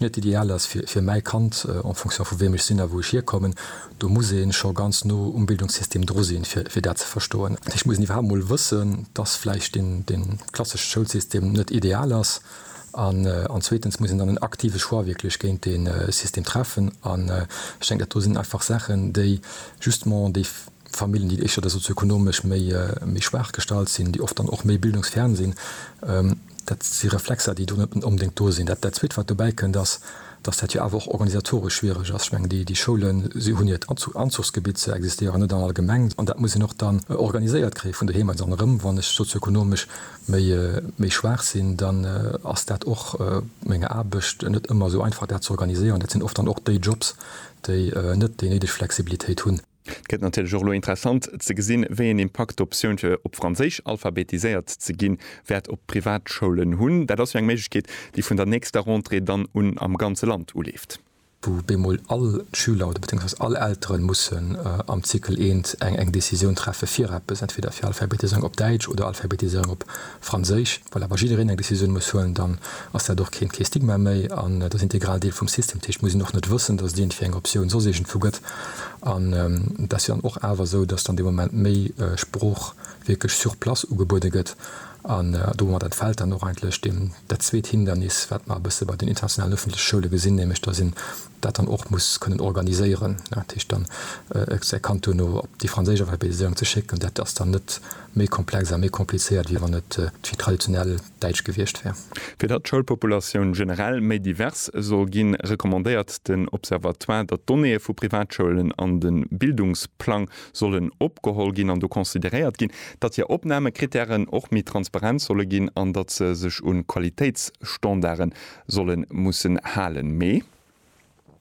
net ideal ass fir mäi Kand en fonction vu wem ech sinn a wou ech hierkommen. Do muss ee scho ganz no um Bildungssystem dru sinn, fir dat ze verstoen. Dat heescht, et muss een iwwerhaapt emol wëssen, dass vläicht dee klassesche Schoulsystem net ideal ass. An zweetens muss een dann en aktive Choix wierklech géint dee System treffen. An ech denken, dat do sinn einfach Saachen, déi justement déi Familljen, déi éischter sozioekonomesch méi schwaach gestallt sinn, déi oft dann och méi bildungsfern sinn, Dat si Reflexer, déi do net onbedéngt do sinn. Dat Zweet, wat dobäi kënnt, ass, dass dat jo awer och organisatoresch schwiereg ass. Ech mengen, déi Schoule hunn hiert Anzuchsgebitt, se existéieren net an all Gemeng, an dat muss een och dann organiséiert kréien vun doheem aus. An erëm, wann ech sozio-ekonomesch méi schwaach sinn, dann ass dat och meng Aarbecht net ëmmer esou einfach, dat ze organiséieren. Dat sinn oft dann och déi Jobs, déi net déi néideg Flexibilitéit hunn. Et gëtt natierlech och elo interessant ze gesinn, wéi een Impakt d'Optioun fir op Franséisch alphabetiséiert ze ginn, wäert op d'Privatschoulen hunn. Dat ass jo eng Méiglechkeet, déi vun der nächster Rentrée dann un am ganze Land uleeft. wou bemol all Schüler oder beziehungsweise all Elteren mussen am Zykel I eng Décisioun treffe fir eppes, entweder fir Alphabetisierung op Däitsch oder Alphabetisierung op Franséisch, well awer jiddereen eng Decisioun muss huelen, dann ass dat och keen, kee Stigma méi an et ass integral Deel vum System. Dat heescht, muss een och net wëssen, dass et iergendwéi eng Optioun soss iergendwou gëtt an et ass jo dann och awer esou, dass dann dee Moment méi Sprooch wierklech sur place ugebuede gëtt an domat entfält dann och eigentlech deem dat zweet Hindernis, wat mer e bësse bei den internationalen ëffentleche Schoule gesinn, nämlech dass een dat dann och muss kënnen organiséieren, dat heescht dann säi Kand duerno op déi franséisch Alphabetiséierung ze schécken, dat ass dann net méi komplex a méi komplizéiert, wéi wann et d'Vi traditionell Däitsch gewiescht wär. Fir datt d'Schoulpopulatioun generell méi divers soll ginn, recommandéiert den Observatoire, datt d'Donnéeë vu Privatschoulen an de Bildungsplang sollen opgeholl ginn an do consideréiert ginn, datt hir Opnamekrittären och méi transparent solle ginn an datt se sech un Qualitéitsstandarde Sollen mussen halen, mee.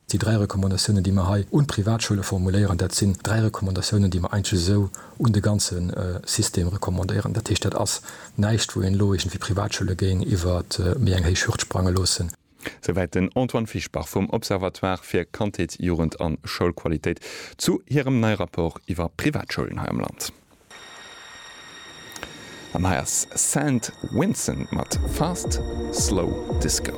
Déi dräi Recommandatiounen, déi mer hei un d'Privatschoule formuléieren, dat sinn dräi Recommandatiounen, déi mer eigentlech esou un de ganze System recommandéieren. Dat heescht, dat ass näischt, wou een elo iergendwéi d'Privatschoule géing iwwer méi eng héich Hürd sprange loossen. Souwäit den Antoine Fischbach vum Observatoire fir Kandheet, Jugend a Schoulqualitéit zu hirem neie Rapport iwwer Privatschoulen hei am Land. An hei ass Saint Vincent mat Fast Slow Disco.